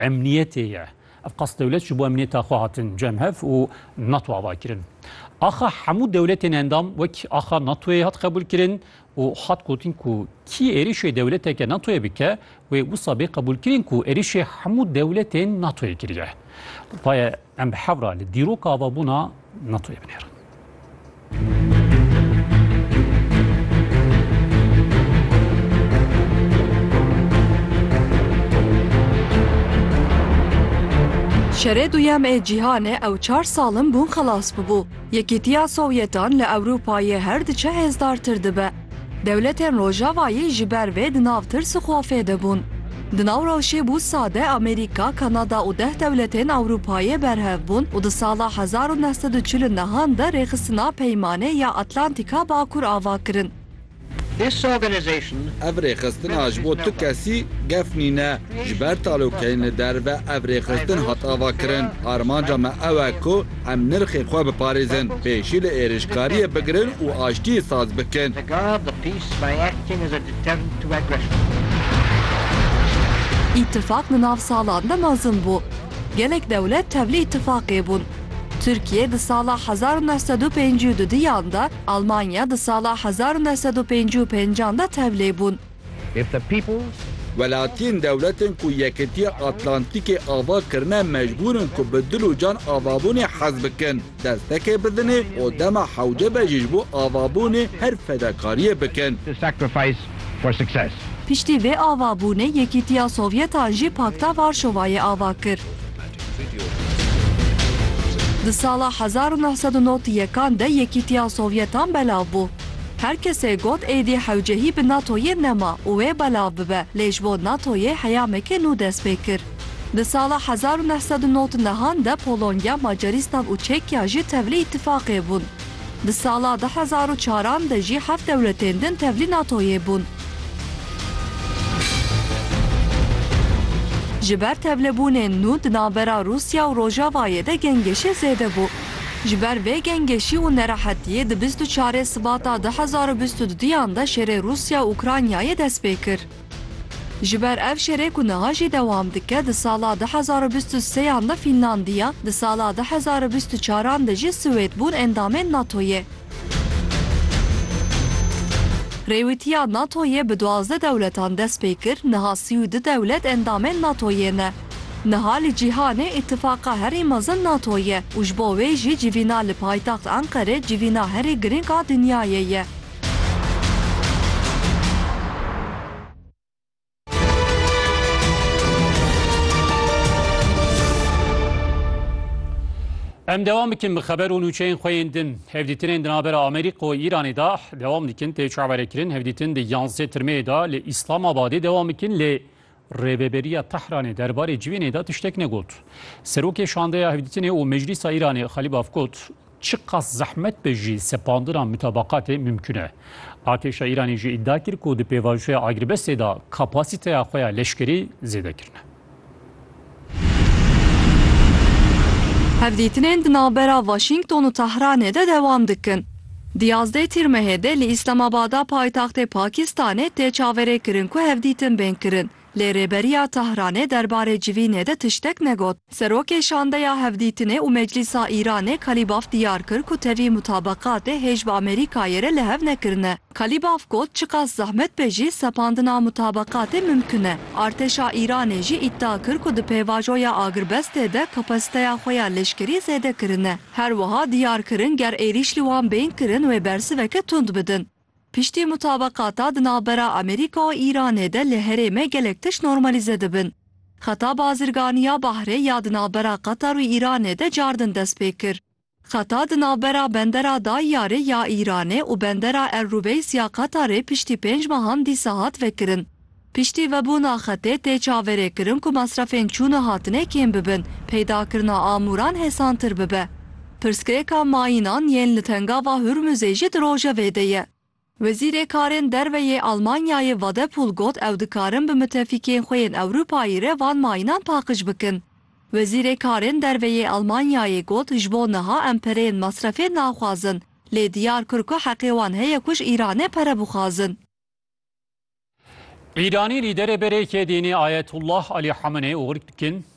Emniyetê ye. Ev qas dewlet ji bo emniyeta xwe hatin cem hev û nato ava kirin. Axa hemû dewletên endam wek axa natoyê hat qebûlkirin û hat gotin ku kî êrişê dewleteke natoyê bike wê wisa bê qebûlkirin ku êrişê hemû dewletên natoyê kiriye. Vaye Em bi hev re li dîroka avabûna NATO'yê binêrin. Şerê duyem ê cîhanê ew çar salin bûn xelas bibû. Yekîtiya Sowyetan li Ewropayê her diçe hêzdartir dibe. Dewletên Rojavayî ji ber vê di nav tirs û xofê de bûn. Di nav rewşê bû sade Amerîka, Kanada û deh dewletên Ewropayê berhev bûn û di sala hezar û neh sed û çil û nehan de rêxistina Peymanê ya Atlantîka Bakur ava kirin. Ev rêxistina ji bo tu kesî gef nîne. Ji ber talokeyên li derve ev rêxistin hat ava kirin. Armanca me ew e ku Em nirxê xwe biparêzin, pêşî li êrişkariyê bigirin û aştiyê saz bikin. Îtîfaq di nav salan de mezin bû. Gelek dewlet tevlî îtîfaqê bûn. Tirkiye di sala hezar û neh sed û pêncî û du diyan de, Almanya di sala hezar û neh sed û pêncî û pêncan de tevlê bûn. Welatiyên dewletên ku Yekitiya Atlantîkê ava kirine mecbûr in ku bi dil û can avabûnê hez bikin, destekê bidinê û dema hewce be jî ji bo avabûnê her fedakariyê bikin. Piştî vê avabûnê Yekîtiya Sovyetan jî Pakta Varşovayê ava kir. Di sala hezar û neh sed û nod û yekan de Yekîtiya Sovyetan belav bû. Her kesê got êdî hewcehî bi NATOyê nema û wê belav bibe lê ji bo NATOyê heyamekê nû dest pê kir. Di sala hezar û neh sed û nod nehan de Polonya, Macarîstan û Çekya jî tevlî îtîfaqê bûn. Di sala du hezar û çar an de jî heft dewletên din tevlî NATOyê bûn. Ji ber tevlibûnên nû di navbera Rûsya û Rojavayê de gengêşê zêde bû. Ji ber vê gengeşî û nerahetiyê di bîst û çarê Sibata du hezar û bîst û du duyan de şerê Rûsya û Ukraynayê dest pê kir. Ji ber ev şerê ku niha jî dewam dike di sala du hezar û bîst û sê yan de Fînlandiya, di sala du hezar û bîst û çar an de jî Swêd bûn endamên NATO'yê. Rêwîtiya NATO'yê bi duwazdeh dewletan dest pê kir, niha sî û du dewlet endamên NATO'yê ne. Niha li cîhanê îtîfaqa herî mezin NATO ye û ji bo wê jî civîna li paytext Enqerê civîna herî girîng a dinyayê ye. Em dewam bikin bi xeber û nûçeyên xwe yên din. Hevdîtinên di navbera Amerîka û Îranê de dewam dikin tê çaverekirin. Hevdîtin di yanzdeh tirmeyê de li Îslamabadê dewam bikin lê Rêveberiya Tehranê derbarê civînê de tiştek negot. Serokê Şandeya Hevdîtinê û Meclîsa Îranê Xalîbaf got, Çiqas zehmet be jî sepandina mutabeqatê mimkûn e. Artêşa Îranê jî îdia kir ku di pêvajoya agirbestê de kapasîteya xwe ya leşkerî zêde kirine. Hevdîtinên di navbera Waşîngton û Tehranê de dewam dikin. Di yazdeh Tîrmehê de li Îslamabada paytextê Pakîstanê tê çaverêkirin ku hevdîtin bên kirin, lê Rêberiya Tehranê derbarê civînê de tiştek negot. Serokê Şandeya Hevdîtinê û Meclîsa Îranê Kalîbaf diyar kir ku tevî mutabeqatê hêj bi Amerîkayê re li hev nekirine. Kalîbaf got çiqas zehmet be jî sepandina mutabeqatê mimkun e. Artêşa Îranê jî îddia kir ku di pêvajoya agirbestê de kapasiteya xwe ya leşkerî zêde kirine. Her wiha diyar kirin ger êrîş li wan bên kirin wê bersiveke tund bidin. Piştî mutabeqata di navbera Amerîka û Îranê de li herême gelek tişt normalîze dibin. Xeta bazirganî ya bahrê ya di navbera Qatar û Îranê de cardin dest pê kir. Xeta di navbera bendera Dayiyarê ya Îranê û bendera El Rubeys ya Qatarê piştî pênc mehan dîsa hat vekirin. Piştî vebûna xetê tê çavêrêkirin ku mesrefên çûn û hatinê kêm bibin, peydakirina amûran hêsantir bibe. Pirsgirêka mayînan yên li Tengava Hurmuzê jî di rojevê de ye. Wezîrê Karên Derve yê Almanyayê Wadephul got ew dikarin bi mitefîkên xwe yên Ewropayî re van mayinan paqij bikin. Wezîrê Karên Derve yê Almanyayê got ji bo niha em pereyên mesrefê naxwazin, lê diyar kir ku heqê wan heye ku ji Îranê pere bixwazin. Îranî lîderê berê yekê dînî Ayetullah Alî Hameneî û Rkin,